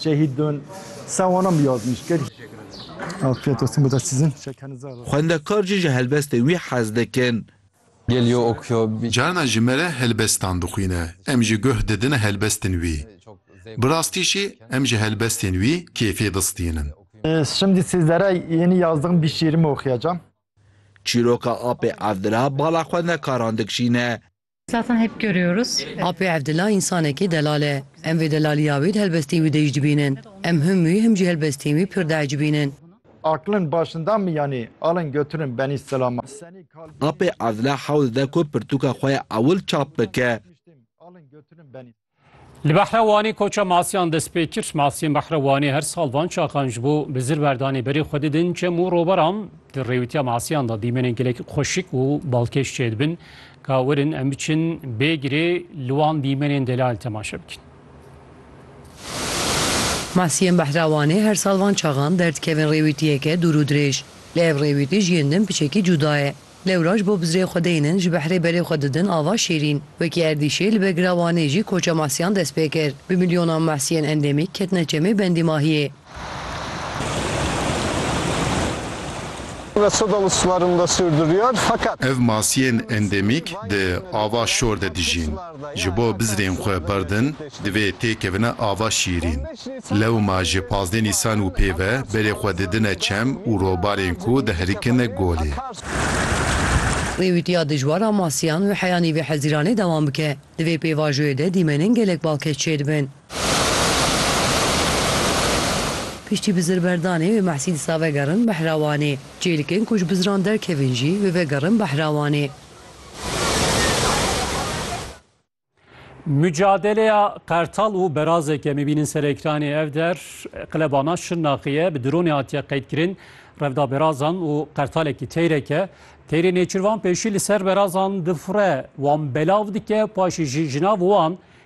Şehîd bin. Sen wana min yazmiş kir. Afiyet olsun bu da sizin. Xwendekar jî ji helbestê wî hez dikin. Geliyor okuyor bir. Carna ji me re helbestan dixwîne, em jî guh didine helbestên wî. Bi rastî jî em ji helbestên wî kêfê distînin. Şimdi sizlere yeni yazdığım bir şiirimi okuyacağım. Çîroka Apê Evdira bala xwendekaran dikşîne. Zaten hep görüyoruz. Apê Evdila însanekî delal e. Em vê delaliya wî di helbestên wî de jî dibînin. Em him wî him jî helbestên wî pir diecibînin. Aklin başinda mi yanî alin götürün benî silama. Apê Evdila hewl dide ku pirtûka xwe ya ewil çap bike. Li Behra Wanê koça masiyan dest pê kir. Masiyên Behra Wanê her sal van çaxan ji bo bi zir berdanê berê xwe didin çem û roberan. Di rêwîtiya masiyan de dîmenên gelek xweşik û balkêş çêdibin ka werin em biçin bê girê li wan dîmenên delal temaşe bikin. Masiyên Behra Wanê her sal van çaxan derdikevin rêwîtiyeke dûr û dirêj. Lê ev rêwîtî ji yên din piçekî cûda ye. Lewra ji bo bizrê xwe deynin ji behrê berê xwe didin ava şêrîn. Wekî erdîşê li Begila Wanê jî koça mehsiyan dest pê kir. Bi milyonan mehsiyên endemîk ketine çemê bendîmahiyê. Ev masiyên endemîk di ava şor de dijîn. Ji bo bizrên xwe berdin, divê têkevine ava şîrîn. Lewma ji pazdeh nîsan û pê ve berê xwe didine çem û robarên ku diherikin golê. Wê wîtiya dijwar a masiyan û heyanî vê hezîranê dewam bike. Di vê pêvajoyê de dîmenên gelek balkêş çêdibin. Piştî bizirberdanê wê Mehsî disa vegerin Behrawanê. Çêlikên ku ji bizran derkevin jî wê vegerin Behrawanê. Mücadeleya Qertal û berazeke mebînin ser ekranê ev der qilebana Şirnaxiye bi dronê hatiye qeydkirin. Revda berazan û qertalekî teyreke teyrê nêçirvan pêşî li ser berazan difire wan belav dike paşî jî jinav wan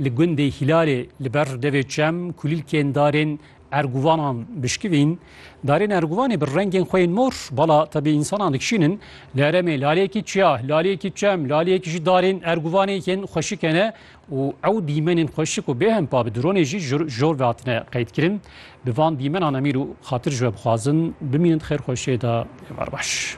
Li gundê Hîlalê li ber devê çem kulîlkên darên erguvanan bişkivîn. Darên erguvanê bi rengên xwe yên mor, bala tevî însanan dikişînin. Li herêmê laleyekî çiya, laleyekî çem, laleyekî jî darên erguvanê yên xweşike ne û ew dîmenên xweşik û bêhempa bi dronê jî jor ve hatine qeydkirin. Bi van dîmenan emîr û xatir ji we bixwazin bimînin di xêrxweşiyê de. Êvar baş.